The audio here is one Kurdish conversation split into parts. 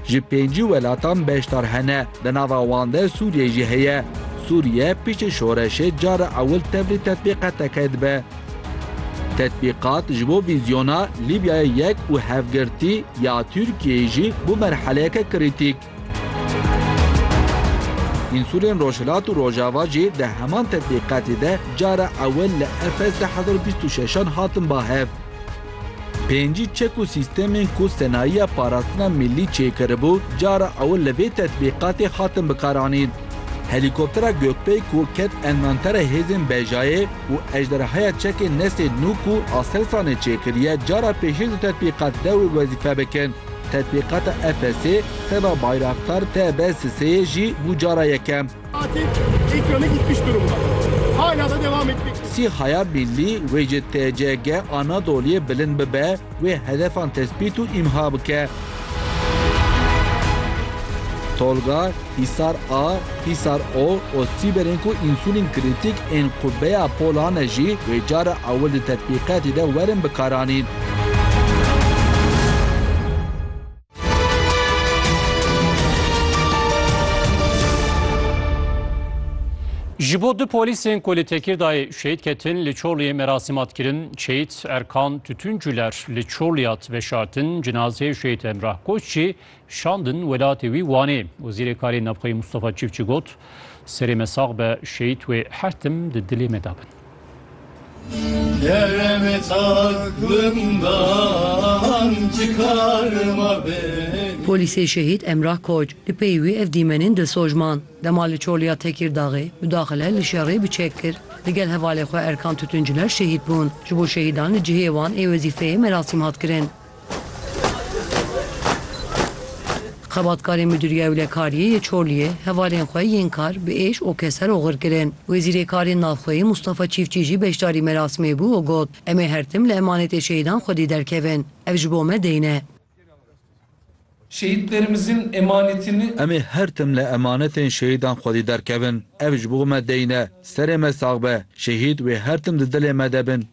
Ji pêncî welatan beşdar hene, di nava wan de Sûriyê jî heye. Sûriye piştî şoreşê cara ewil tevlî tetbîqeteke dibe. Tetbîqat ji bo vîzyona Lîbyayê Yek û Hevgirtî ya Tirkiyeyê jî bû merheleyeke krîtîk. Însulên Rojhilat û Rojava jî di heman tetbîqatê de cara ewil li Efes di hezar û bîst û şeşan hatin ba hev. Pêncî çek û sîstemên ku Senayiya Parastina Millî çêkiribû cara ewil li vê tetbîqatê hatin bikaranîn. Helîkoptera Gökpey ku ket envantera hêzên Bejayê û ejderhaya çekên Nesê nû ku Aselsanê çêkiriye cara pêşîn di tetbîqatê de wê wezîfe bikin. Tetbîqata Efesê seba Bayraktar TB Siseyê jî bû cara yekem. Sîhaya Millî wê ji TCG Anadoliyê bilind bibe, wê hedefan tespît û îmha bike. Tolga, Hîsar A, Hîsar O û Sîberên ku însulîn krîtîk ên qûbeya pola ne jî wê cara ewil di tetbîqatî de werin bikaranîn. Ji bo du polîsên ku li Tekîrdayê şehîd ketin li Çorliyê merasîm hat kirin. Şehîd Erkan Tütüncüler li Çorliyê hat veşartin. Cinazeyê Şehîd Emrah Koç jî Şandin welatê wî Wanê. Wezîrê Karê Navxweyî Mustafa Çîfçî got, Serê me sax be, şehîd wê her tim di dilê me de bin. Polîsê şehîd Emrah Koç li pey wî ev dîmenên dilsojman dema li Çoliya Tekîrdaxê mudaxile li şerê bi çek kir digel hevalê xwe Erkan Tütüncüler şehîd bûn. Ji bo şehîdan li cihê wan ê wezîfeyê merasîm hat kirin. Xebatkarên Midûriya Ewlekariyê yê Çorliyê hevalên xwe yên kar bi êş û keser oxir kirin. Wezîrê Karên Navxweyî Mûstafa Çîfçî jî beşdarî merasimê bû û got, Em ê her tim li emanetê şehîdan xwedî derkevin. Ev ji bo me deyn e. Şehîdlerimizin emanetini. Em ê her tim li emanetên şehîdan xwedî derkevin. Ev ji bo me deyn e. Serê me sax be. Şehîd wê her tim di dilê me de bin.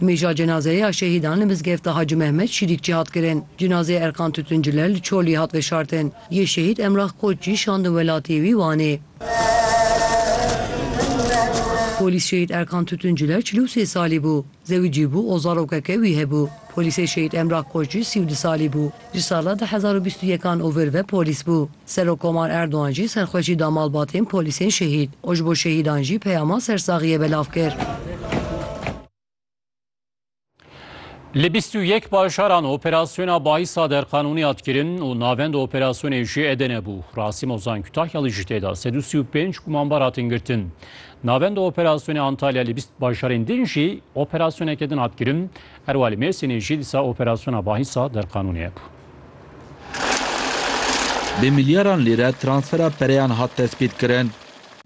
Mîja cenazeyê ya şehîdan li mizgefta Hacî Mehmet Şîrîkçî hat kirin. Cenazeyê Erkan Tûtuncile li Çolî hat veşartin. Yê şehîd Emrah Koç jî şandin welatiyê wî Wanê. Polîs şehîd Erkan Tûtuncile çil û sê salî bû. Zewicî bû û zarokeke wî hebû. Polîsê şehîd Emrah Koç jî sî û du salî bû. Ji sala du hezar û bîst û yek an ovir ve polîs bû. Serokkomar Erdogan jî serxweşî da malbatên polîsên şehîd û ji bo şehîdan jî peyama sersaxiyê belav kir. Li bîst û yek bajaran operasyona Baisa derqanûnî hat kirin û navenda operasyonê jî Edene bû. Rasîm Ozan Kutahyalî jî tê de. Sed û sî û pênc gumanbar hatin girtin. Navenda operasyonê Antalya li bîst bajarên din jî operasyoneke din hat kirin. Herwalî Mêrsînê jî disa operasyona bahîsa derqanûnê hebû. Bi milyaran lîre transfera pereyan hat destpêtkirin.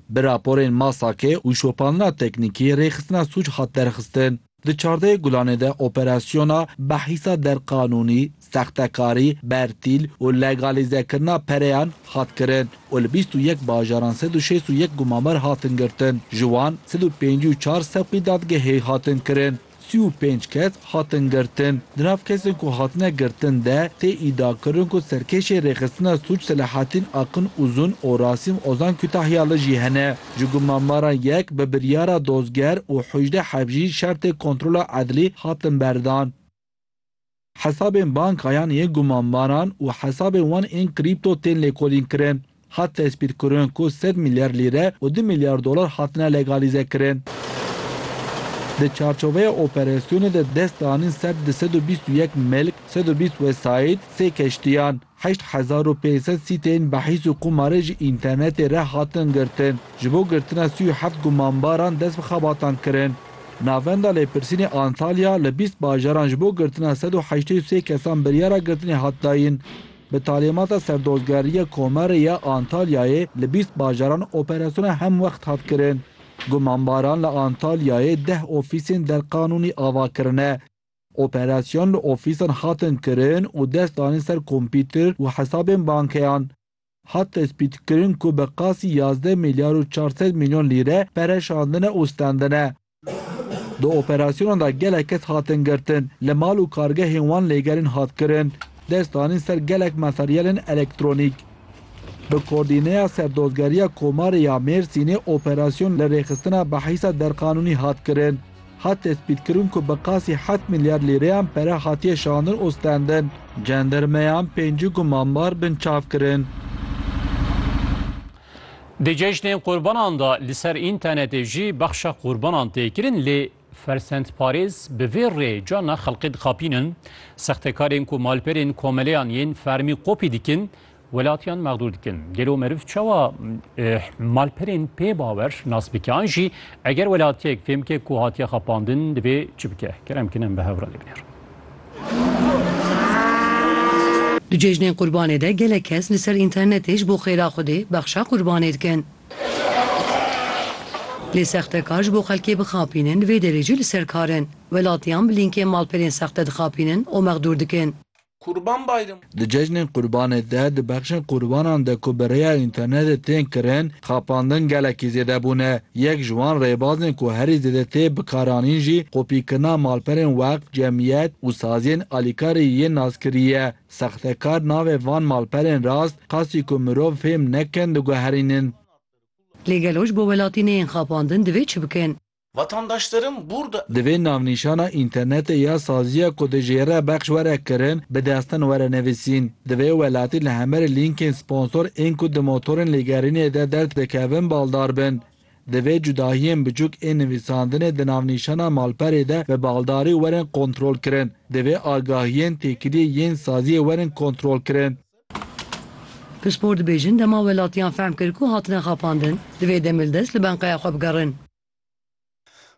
Bi raporên MASAK û şopandina teknîkî rêxistina sûc hat derxistin. Di çardeh gulanê de operasyona bahîsa derqanûnî, sextekarî, bertîl û legalîzekirina pereyan hat kirin û li bîst û yek bajaran sed û şêst û yek gumamar hatin girtin. Ji wan sed û pêncî û çar sevqî dadgehê hatin kirin. Sî û pênc kes hatin girtin. Di nav kesên ku hatine girtin de tê îdiakirin ku serkêşên rêxistina sûc Selahattin Akın Uzun û Rasim Ozan Kütahyalı jî hene. Ji gumnanbaran yek bi biryara dozger û hojde hevjî şertê kontrola edlî hatin berdan. Hesabên bankayan yên gumanbaran û hesabên wan ên krîpto tên lêkolînkirin. Hat tespîtkirin ku sed milyar lîre û du milyar dolar hatine legalîzekirin. Di çarçoveya operasyonê de dest danîn ser di sed û bîst û yek milk, sed û bîst wesayît, sê keştiyan, Heşt hezar û pênc sed sîteyên behîs û qumarê ji înternetê re hatin girtin. Ji bo girtina sî û heft gumanbaran dest bi xebatan kirin. Navenda Lêpirsînê Antalya li bîst bajaran ji bo girtina sed û heştê û sê kesan biryara girtinê hat dayîn. Bi talîmata Serdozgeriya Komarê ya Antalyayê li bîst bajaran operasyona hemwext hat kirin. Gumanbaran li Antalyayê deh ofîsên derqanûnî ava kirine. Operasyon li ofîsan hatin kirin û dest danîn ser kompîter û hesabên bankeyan. Hat tespîtkirin ku bi qasî yazdeh milyar û çar sed milyon lîre pere şandine û stendine. Di operasyonan de gelek kes hatin girtin, li mal û kargehên wan lêgerîn hat kirin. Dest danîn ser gelek materyalên elektronîk. Bi Kordîneya Serdozgeriya Komarê ya Mêrsînê operasyon li rêxistina behîsa derqanûnî hat kirin. Hat tespîtkirin ku bi qasî heft milyar lîreyan pere hatiye şandin û stendin. Cendermeyan pêncî gumanbar binçav kirin. Di cejnên qurbanan de li ser înternetê jî bexşa qurbanan tê kirin lê fersendparêz bi vê rê carna xelkê dixapînin. Sextekarên ku malperên komeleyan yên fermî kopî dikin, Welatiyan mexdûr dikin. Gelo meriv çawa malperên pê bawer nas bike an jî eger welatiyek fêm bike ku hatiye xapandin divê çi bike? Kerem kin em bi hev re lêbinêrin. Di cejnên Qurbanê de gelek kes li ser înternetê ji bo xêra Xwedê bexşa Qurbanê dikin. Lê sextekar ji bo xelkê bixapînin di vê derê jî li ser kar in. Welatiyan bi lînkên malperên sexte dixapînin û mexdûr dikin. Kurban Bayramı. Di cejnên Qurbanê de di bexşên qurbanan de ku bi rêya înternetê tên kirin, xapandin gelekî zêde bûne. Yek ji wan rêbazên ku herî zêde tê bikaranîn jî kopîkirina malperên weqf, cemiyet û saziyên alîkarî yên naskirî ye. Sextekar navê van malperên rast qasî ku mirov fêm nekin diguherînin. Lê gelo ji bo welatî neyên xapandin divê çi bikin? Vatandaşlarım burada. Divê navnîşana înternetê ya saziya ku di jêre bexş were kirin bi destin were nivîsîn. Divê welatî li hemerî lînkên sponsor ên ku di motorên lêgerînê de derd dikevin baldar bin. Divê cudahiyên biçûk ên nivîsandinê di navnîşana malperê de bi baldarî werin kontrolkirin. Divê agahiyên têkiliyê yên saziyê werin kontrolkirin. Pispor dibêjin dema welatiyan fehm kir ku hatine xapandin, divê demê li dest li benqeya xwe bigerin.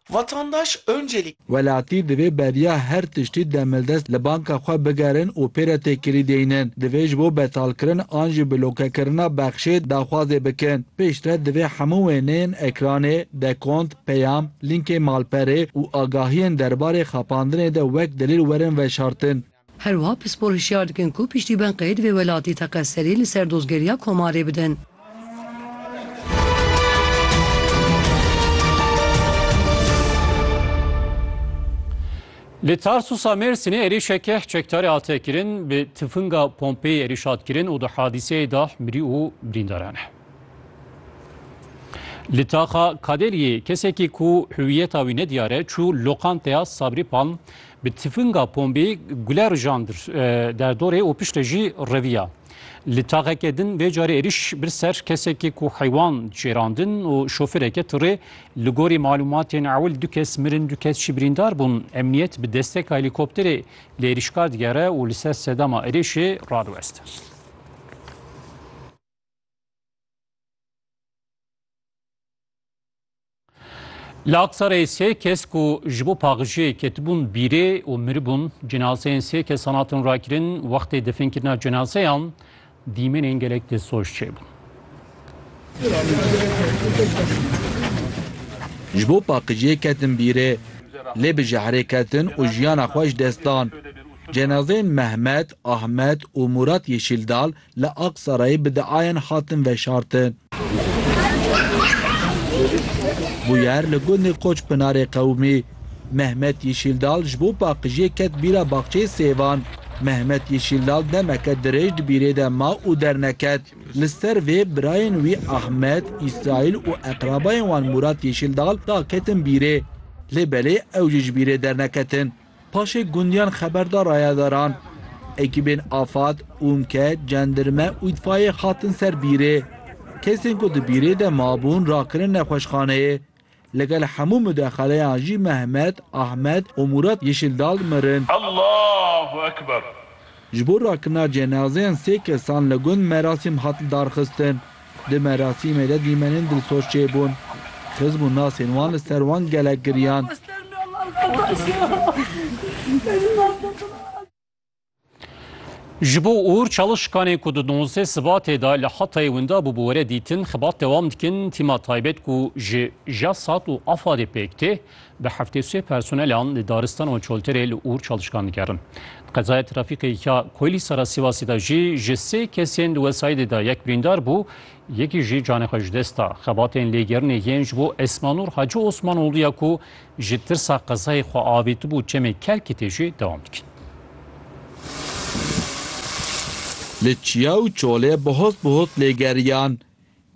Vatandaş Öncelik. Welatî divê beriya her tiştî demildest li banka xwe bigerin û pê re têkilî deynin. Divê ji bo betalkirin an jî blokekirina bexşê daxwazê bikin. Pêştre divê hemû wêneyên ekranê, dekont, peyam, lînkê malperê û agahiyên derbarê xapandinê de wek delîl werin veşartin. Her wiha pispor hişyar dikin ku piştî bên qeyd vê welatî teqez serî li ser dozgeriya komarê bidin. Li Tarsusa Mêrsînê êrîşek keh çekdarê hate kirin bi tifinga pompeyê êrîş hat kirin û di hadîseyê de mirî û birîndar hene. Li taxa Kadeliyê kesekî ku hüwiyeta wî nediyar e çû loqanteya Sabrî Palm Bi tifinga pombê gule rijan dir derdorê û piştre jî reviya. Li taxeke din vê carê êriş bir ser kesekê ku heywan cêrandin û şofireke tirê. Li gorî malûmatên ewil du kes mirin du kes jî birîndar bûn. Emniyet bi desteka helîkopterê li êrişkar digere û li ser sedema êrişê radiweste. Li Aksarê sê kes ku ji bo paxijiyê ketibûn bîrê û miribûn cinazeyên sê kesan hatin rakirin wextê definkirina cinazeyan dîmenên gelek destsoş çêbûn. Ji bo paqijiyê ketin bîrê lê bi jehrê ketin û jiyana xwe ji dest dan. Cenazeyên Mehmet, Ahmet û Murat Yeşîldal li Aqsarayê bi diayan hatin veşartin. Bûyer li gundê Koçpinarê qewimî. Mehmet Yîşîldal ji bo paqijiyê ket bîra baxçeyê sêvan. Mehmet Yîşîldal demeke dirêj di bîrê de ma û derneket. Li ser vê birayên wî Ahmet, Îsraîl û eqrabayên wan Mûrat Yîşîldal daketin bîrê. Lê belê ew jî ji bîrê derneketin. Paşê gundiyan xeber da rayedaran. Ekîbên afad, ûmke, cendirme û îtfayeyê hatin ser bîrê. Kesên ku di bîrê de mabûn rakirin nexweşxaneyê. Li gel hemû mudexeleyan jî Mehmet, Ahmet û Murat Yeşildal mirin. Allahu ekber. Ji bo rakirina cenazeyan sê kesan li gund merasîm hat lidarxistin. Di merasîmê de dîmenên dilsoz çêbûn. Xiz bû nasên wan li ser wan gelek giriyan. Ji bo ûr çalişkanê ku di nozeh Sibatê de li Hatayê winda bû bi were dîtin xibat dewam dikin, tîma taybet ku ji JASAT û AFAD'ê pêk tê, Bi heftê sê personelan li daristana Çolterê li Ûr çalişkan dikerin. Di qezaya trafîkê ya Koylî Sara Sivasê de jî ji sê kesên di wesayîdê de yek birîndar bû, yekî jî canê xwe ji dest da. Xebatên lêgerinê yên ji bo Esmanûr Hacî Osmanoglû ya ku ji tirsa qezayê xwe avêtibû çemê kelkê tê jî dewam dikin. Li Çiya û Çolê bi hot bi hot lêgeriyan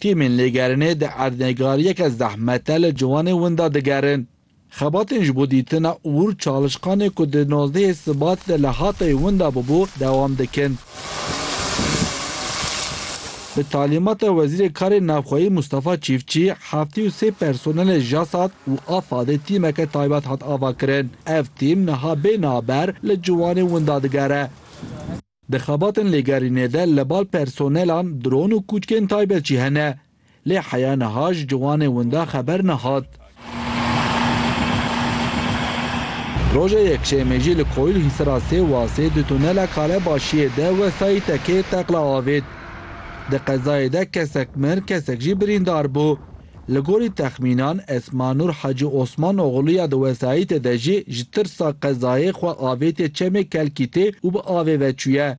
Tîmên lêgerinê di erdnêgariyeke zehmet de li ciwanê winda digerin. Xebatên ji bo dîtina ûr çalişqanê ku di nozdehê Sibat de li Hatayê winda bûbû dewam dikin. Bi talîmata Wezîrê Karên Navxweyî Mustafa Çîfçî heftê û sê personelê JASAT û AFAD'ê tîmeke taybet hat avakirin. Ev tîm niha bê naber li ciwanê winda digere. Di xebatên lêgerînê de li bal personelan dron û kûçkên taybet jî hene. Lê heya niha ji ciwanê winda xeber nehat. Roja Yekşemê jî li Koyil Hîsira sê wasê di tunela Kalebaşiyê de wesayî tekeyê teqla avêt. Di qezayê de kesek mir, kesek jî birîndar bû. Li gorî texmînan Esmanur Hacî Osman Oxlu ya di wesayîtê de jî ji tirsa qezayê xwe avêtiye çemê Kelkîtê û bi avê ve çûye.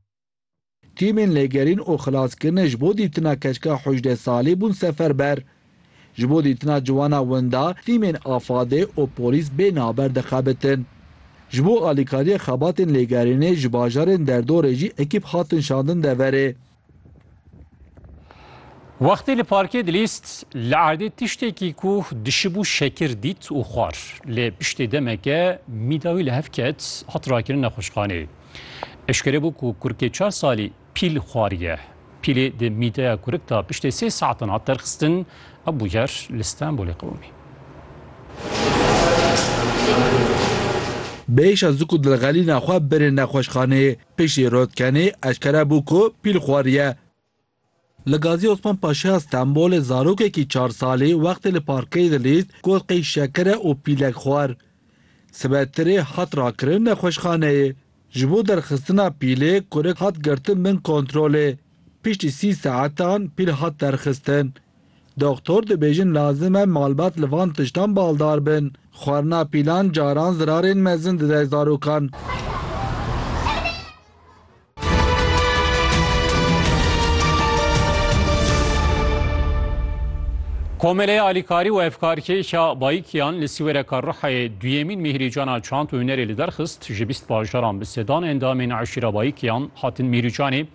Tîmên lêgerîn û xilaskirinê ji bo dîtina keçika hûjdeh salî bûn seferber. Ji bo dîtina ciwana winda tîmên Afadê û polîs bê naber dixebitin. Ji bo alîkariya xebatên lêgerînê ji bajarên derdorê jî ekîp hatin şandin deverê. Wextê li parkê dilîst, li erdê tiştekî ku dişibû şekir dît û xwar. Lê piştê demeke mîda wî li hev ket, hat rakirin nexweşxaneyê. Eşkere bû ku kurikê çar salî pîl xwariye. Pîlê di mîdeya kurik de piştê sê saetan hat derxistin, ew bûyer li Stenbolê qewimî. Bêyîşa zik û dilxelîna xwe birê nexweşxaneyê. Piştî Rotkenî eşkere bû ku pîl xweriye. Li Gazî Osman Paşaya Stenbolê zarokekî çar salî wextê li parkeyê dilîst got qey şeker e û pîlek xwar. Sibe tirê hat rakirin nexweşxaneyê. Ji bo derxistina pîlê kurik hat girtin bin kontrolê. Piştî sî saetan pîl hat derxistin. Doxtor dibêjin lazim e malbat li van tiştan baldar bin. Xwarina pîlan caran zirarên mezin dide zarokan. Komeleya Alîkarî û Evkarkêş a Bayikiyan li Sîwereka Rihayê duyemîn mîhrîcana çand û hunerê li derxist. Ji bîst bajaran bi sedan endamên eşîra Bayikiyan hatin mîhrîcanê.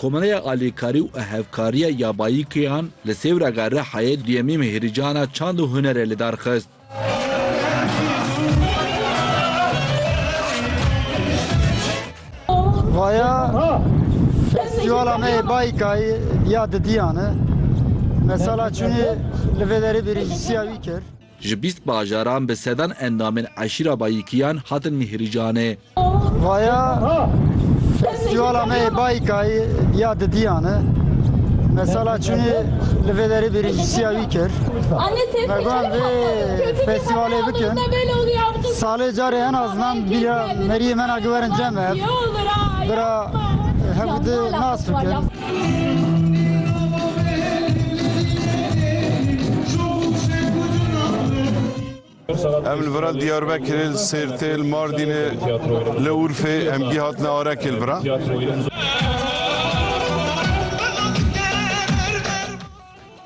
Komereya Alîkarî û Hevkariya ya Bayîkêyan li Sêwrega Rihayê duyemîn Mehirîcana Çand û Hunerê li dar xist. Vaya festîvala me yê Bayîkayê ya didiyan e. Me sala çûnê li vê derê bêrîjîsiya wî kir. Ji bîst bajaran bi sedan endamên eşîra Bayikiyan hatin mihirîcanê. Vaya festîvala me yê Bayikayê ya di diyan e. Me sala çûnê li vê derê bêrîncîsiya wî kir. Me got vê festîvalê bikin. Salê carê en az nan bîra meriyê me na giwerin cem ev. Bira hevû di nas bikin. Em li vira Diyarbekirê, li Sêrtê, li Mardînê, li Urfê em gî hatine Arekê li vira.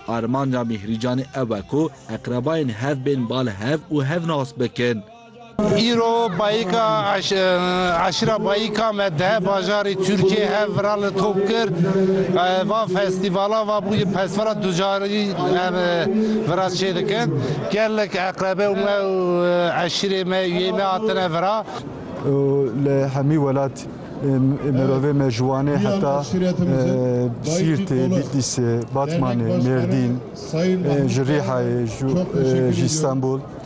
Armanca Mîhrîcanê ew e ku eqrebayên hev bên bal hev û hev nas bikin. Îro Bayika Eşîra Bayika me deh bajarê Tirkiyeyê hev viran li top kir. Va festîvala va bûye pestvala ducarî em viran çê dikin. Gelek eqrebe û me û eşîrê me û yên me hatine viran. Li hemî welat mirovê me ji Wanê heta Sîrtê, Bîtlîsê, Batmanê, Mêrdîn, ji Rîhayê, ji Îstanbul,